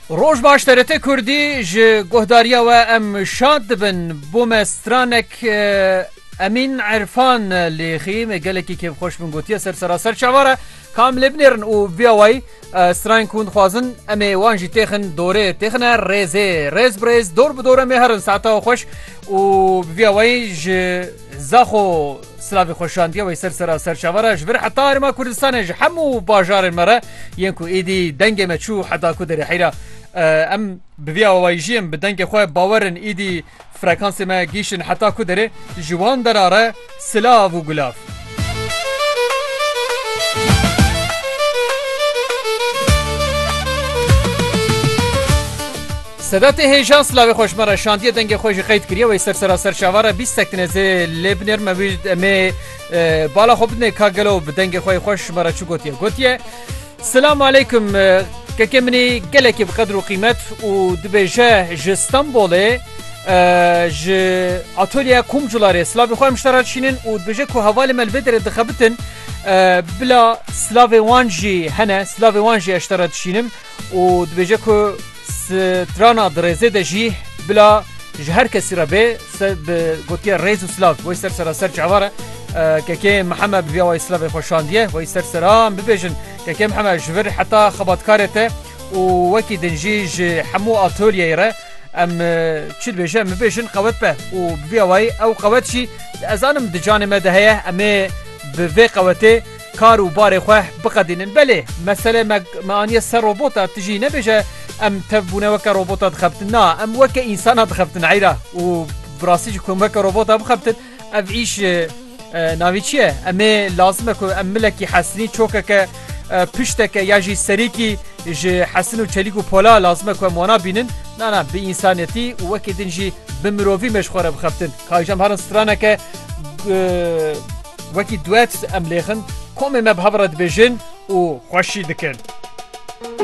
Roj baş TRT Kurdî ji guhdariya we em şad dibin. Bo me stranek Emîn Erfan lêxî me gelekî kêfxweş min gotiye ser seraser çavar e. Kam lê binêrin û via wayî strayen ku hûn dixwazin em ê wan jî têxin dorê têxine rêzê rêz bi rêz dor bi dor em ê herin saeta xweş û via wayî ji Zaxo silavê xwe şandiye wê ser sera serçava re ji vir heta Herêma Kurdistanê ji hemû bajarên me re yên ku êdî dengê me çû heta ku derê heyra em bi vî awayî jiyên bi dengê xwe bawerin êdî frekansê me gihîştin heta ku derê ji wan dera re silav û gulav. Sedatê hêja silavê xweş me re şandiye dengê xwe jî qeyd kiriye wey ser sera ser şava re bîst sektinê zê lê binêr me wî emê bala xwe bidinê ka gelo bi dengê xwe xweş me re çi gotiye gotiye Silam aleykum kekê minî gelekî bi qedir û qîmet û dibêje ji Stenbolê ji atolya komcularê silavê xwe em ji te re dişînin û dibêje ku hevalê me li vê derê dixebitin bila silavê wan jî hene silavê wan jî ez ji te re dişînim û dibêje ku strana di rêzê de jî bila ji her kesî re bê bi gotiya rêz û silav wey ser sera ser çavan re kekê Mihemed bi vêya wey silavê xwe şandiye wey ser seran bibêjin kekê Mihemed ji vir heta xebatkarê te û wekî din jî ji hemû atolyeyê re em çi dibêje em bibêjin qewet be û bi vêya wey ew qewet jî ez zanim di canê me de heye em ê bi vê qewetê Kar û barê xwe biqedînin. Belê, mesele me me aniye ser robota, tu jî nebêje em tev bûne weke robota dixebtin. Na, em weke însana dixebtin heyra û bi rastî jî ku em weke robota bixebtin ev îş navî çi ye? Em ê lazim e ku em milekî hesinî çokeke pişteke ya jî serîkî ji hesin û çelîk û pola lazim e ku em wana bînin. Na na bi însaniyetî û wekî din jî bi mirovî me ji xwe re bixebtin. Ka îş em herin straneke Wekî duet em lêxin komê me bi hev re dibêjin û xweşî dikin.